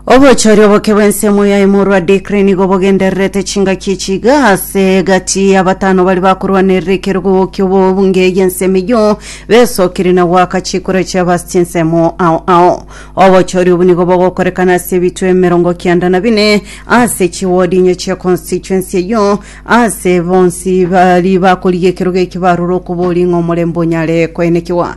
obochori oboke bw'ensemo yaye morwa Dikri nigo bogendererete chingaki echiga ase egati y'abatano bari bakorwanerera ekerogo ki'obobunge y'ensemo eyio besokire na goaka chikura chiabo ase chinsemo ao ao obochori obo nigo bogokorekana ase ebitwe emerongo kianda na bine ase chiwodi inye chia constituency eyio ase bonsi bari bakorigia ekerogo ekio barure okobori ng'a omorembe onyare koenekiwa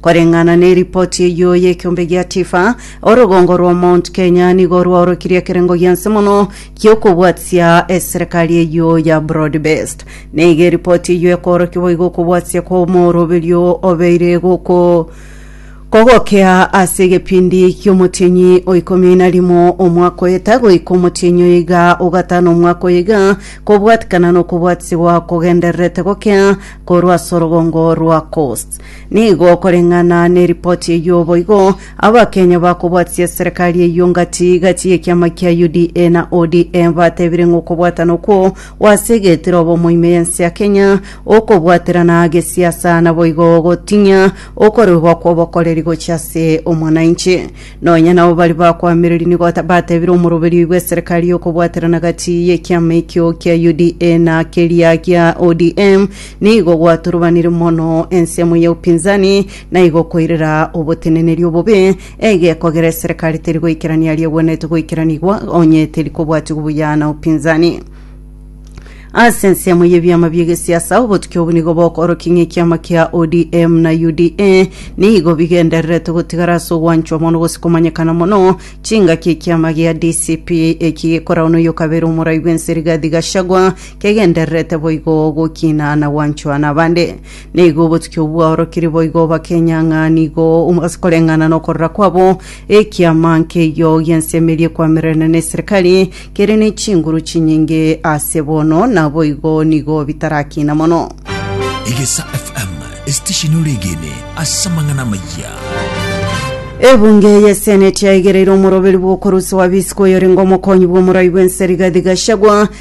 Koreng'ana neripoti eyio y'ekiombe gia TIFA, orogongo rwa Mount Kenya nigo rwaorokirie ekerengo gianse mono gi'okobwatisia eserekari eyio ya broad based. Nigo eripoti eyio ekoorokia boigo okobwatisia kw'omoroberio obeire goko kogokea ase egepindi ki'omotienyi o ikomi na rimo omwaka oeta goika omotienyi o iga ogatano omwaka oyo iga, kobwatikana nokobwatisibwa kogendererete gokea korwa ase orogongo rwa Coast. Nigo okoreng'ana neripoti eyio boigo, Abakenya bakobwatisia serikari eyio gati gati y'ekiama kia UDA na ODM batebire ng'a okobwatana okwo gw'ase egetiro obomo ime y'ense ya Kenya, okobwaterana gesiasa naboigo gotinya okorebwa kw'obokoreri gochia ase omwananchi. Nonya nabo baria bakwamireria nigo batebire omoroberi oyo bw'eserikari y'okobwaterana gati y'ekiama ekio kia UDA na keria gia ODM, Nigo gwaturubanire mono ensemo ya upinzani, na igo koirera oboteneneri obobe, egekogera eserekari teri goikerania aria egwenerete goikeranigwa, onye teri kobwatigwa buya na upinzani. Ase ensemo y'ebiama bi'egesiasa, obotuki obo nigo bokoorokia ng'a ekiama kia ODM na UDA nigo bigendererete gotigara ase ogwanchwa mono gose komanyekana mono, chingaki ekiama gia DCP eki gekoragwa noyo kabere omorai bw'ense Rigathi Gachagua, Kegendererete boigo gokina na gwanchwa nabande. Nigo obotuki obwo bwaorokirie boigo bakenya ng'a nigo ase koreng'ana nokorora kwabo, ekiama nkeiyo gi'ense emerie kwamererania neserikari kere ne chinguru chinyinge ase bono, naboigo nigo bitarakina mono. Egesa FM, esitesheni ore egene ase amang'ana amayia. Ebunge y'Eseneti yaigereire omoroberi bw'okorusia Wabisiko oyorenge omokonyi bw'omorai bw'ense Rigathi Gachagua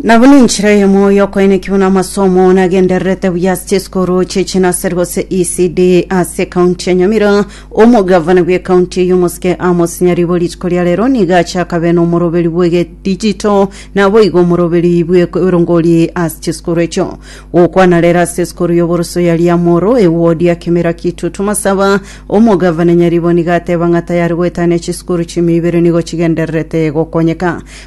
Na buna enchera y'omoyo okoeneki buna amasomo nagendererete buya ase chisikuru chi'echinaseri gose ECD ase ekaunti ya Nyamira omogavana bw'ekaunti eye omosike Amos Nyaribo rituko ria rero nigo achakabe n'omoroberi bw'egedijito naboigo omoroberi bw'erongori ase chisikuru echio gokwana rero ase esikuru y'oboroso ya Riamoro ewodi ya Kimira Kitutu Masaba omogavana Nyaribo nigo ateba ng'a tayari goetania chisikuru chimia ibere nigo chigendererete gokonyeka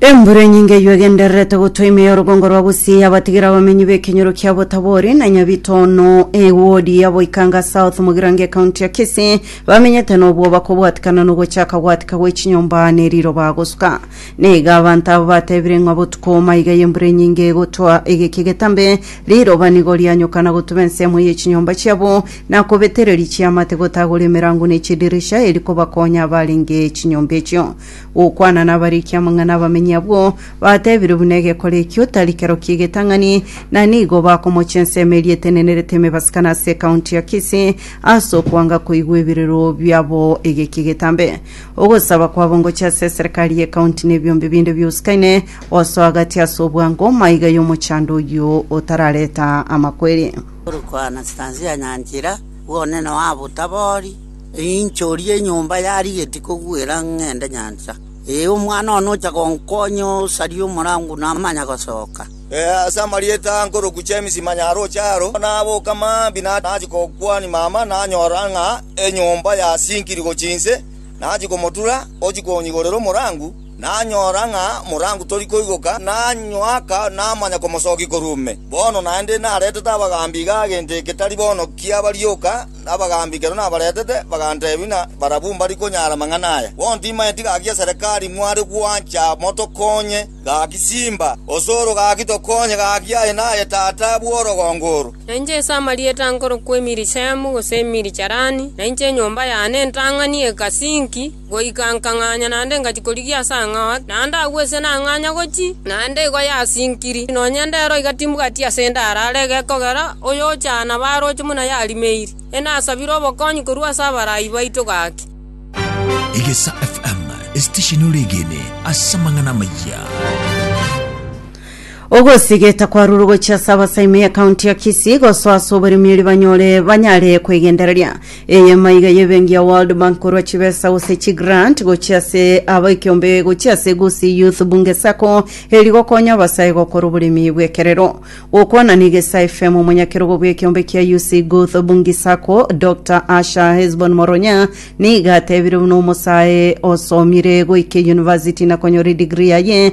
Embura enyinge eyio egendererete gotwa ime y'orogongo rwa Gusii yabatigire abamenyi b'ekenyoro kia Botabori na Nyabitono ewodi ya Boikanga South Mugirango ekaunti ya Kisii bamenyete nobwoba kobwatikana nogochaka gwatika gwe chinyomba ne riroba gosuka. Niga abanto abo batebire ng'a botuko maiga y'embura enyinge egotwa egeke getambe riroba nigo rianyoka na gotuba ensemo ye chinyomba chiabo na kobetereria chiamate gotagora emerango ne chidirisha eri kobakonya abarenge chinyomba echio. gokwana nabariki amang'ana abamenyi abwo, batebire buna egekora ekio tari kerokia egetang'ani, na nigo bakomocha ensemo eria etenenerete emebasikano ase ekaunti ya Kisii ase okwanga koigwa ebirero biabo egeki egetambe. Ogosaba kwabo ngocha ase eserekari ya ekaunti na ebiombe binde biusikaine gosoa agati ase obwango maiga y'omochando oyio otarareta amakweri. Korokwana chitansi ya nyanchera, bw'onene wabo tabori. Rinchori y'enyomba yarigeti kogwera ng'ende nyancha. Ee, omwana one ocha gonkonya osarie omorango namanya gosoka. Ase amarieta a nkoroku James Manyaroche aro, naboka mambia nachia gokwania mama nanyora ng'a enyomba yasinkiri gochia inse. Nachia komotura ochia konyigorera omorango, nanyora ng'a morango tori koigoka, nanywaka namanya komosokia korwa ime. Bono naende naretete abagaambi iga gento eke tari bono kiabarioka. Abagaambi ekero nabaretete, baganteebia ng'a barabwo mbari konyara amang'ana aya. Bono timaeti gaki eserekari mware gwancha motokonye? Gaki simba osoro, gaki tokonye, gaki aye naye tata bw'orogongo oro. Na inche ase amarieta nkorokwa Emirishemu, gose Emiricherani, na inche enyomba yane ntang'ani Ekasinki. Goika nkang'anya naende ngachia korigia ase ang'ao ake, naende agwo ise nang'anya gochia, naende igo yasinkiri, nonya ndero igatimbuga ti asende arare egekogera oyochana baroche buna yarimeiri. Enasabire obokonyi korwa ase abarai baito gaki. Egesa FM, esitesheni ore egene ase amang'ana amayia. Ogosigeta kwarure gochia ase abasaime ya county ya Kisii gosoa ase oboremiri banyore banyare kwegendereria eyemo iga y'ebengi ya World Bank korwa chibesa gose chi grant gochia ase aba ekiombe gochia ase Gusii Youth Bunge Sacco eri gokonya abasae gokora oboremi bw'ekerero. Gokwana na Igesa FM omonyakerogo bw'ekiombe kia UC Guth Bungi Sacco Doctor Asha Hesbon Moronya nigo atebire buna omosae osomire goika eyunivasiti na konyora edigri yaye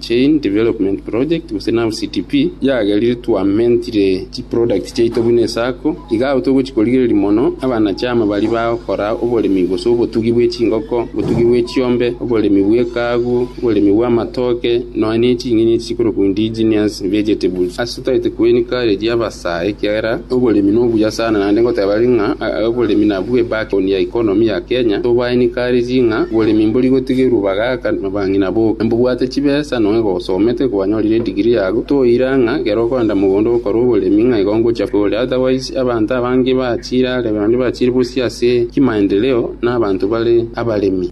Chain Development Project gose nao CDP, yagerire twamentire chiproducts chiaito buna esako. Iga agwo togochi korigereria mono abanachama baria bagokora oboremi gose obotugi bwe chingoko, obotugi bwe chiombe, oboremi bw'ekaagu, oboremi bw'amatoke, nonya ne ching'eni echi chikorokwa indigenous vegetables. Totaete kwenika ere ri'abasaa, ekiagera oboremi nobuya sana, naende ngoteba ere ng'a oboremi nabwo ebackbone ya economy ya Kenya, tobaenikaririe ng'a oboremi mbori gotigerwa bagaka na bang'ina boka. Mbobwate chibesa, nonya gosomete, kwanyorire edigiri yago, toira ng'a ekero okoenda mogondo gokora oboremi ng'a igo ngochia kore, otherwise abanto abange bachiire are, naende bachiire bosio ase chimaendeleo na abanto bare abaremi.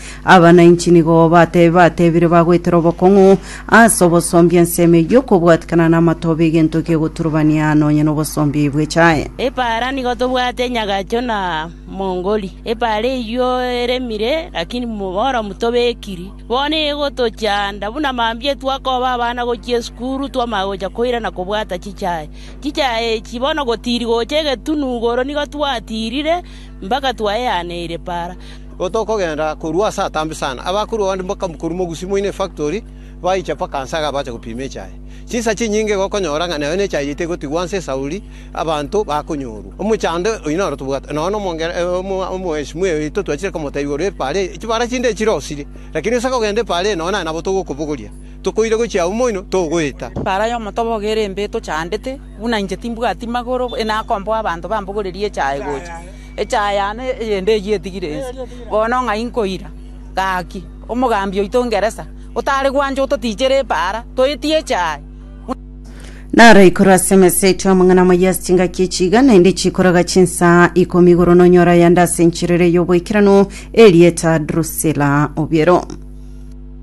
Aba nainche nigo batebe batebire bagoetera obokong'u ase obosombi ensemo eyio okobwatikana namatoba egento giegoturubania nonye nobosombi bwechae. Epaara nigo tobwate nyagacho na mongori. Epaara eyio eremire, lakini moboromu tobekiri. Bono egotochanda buna mambia twakoba abana gochia esukuru twamanya gocha koira na kobwata chichae. Chichae echi bono gotiri gocha egetunu igoro nigo twatirire mpaka twaeaneire epaara. Igo tokogenda korwa ase atambe sana. Abakuru abande bakabua korwa mogusi moino efactori, baicha mpaka nse aga bache gopima echae. Chinsa chinyinge gokonyora ng'a nayo nechae yaito egotigwa nse esauri, abanto bakonyorwa. Omochando oyio noro tobwate, nonya na Omwesimu oito twachire komotebia igoro y'epaara eye, chibara chinde chirosirie, lakini ase kogenda epaara eye nonya aye nabo togokobogoria, tokoira gochia agwo moino, togoeta. Epaara y'omotobogo ere mbe etochandete, buna inche timbwati magoro, inakomboa abanto bambogorerie echae gocha. Echaaya yane eyende eyio etigire ense, bono ng'ai nkoira? Gaki, omogambi oito o Ngeresa, otare gwancha ototichere epaara, toetie echaaya. Naro ikoro ase emesa eto y'amang'ana amaya ase chingaki echi iga naende chikoraga chinsaa ikomi igoro nonyore ayande ase enchera eria y'oboikeranu, erieta Drusila obiero.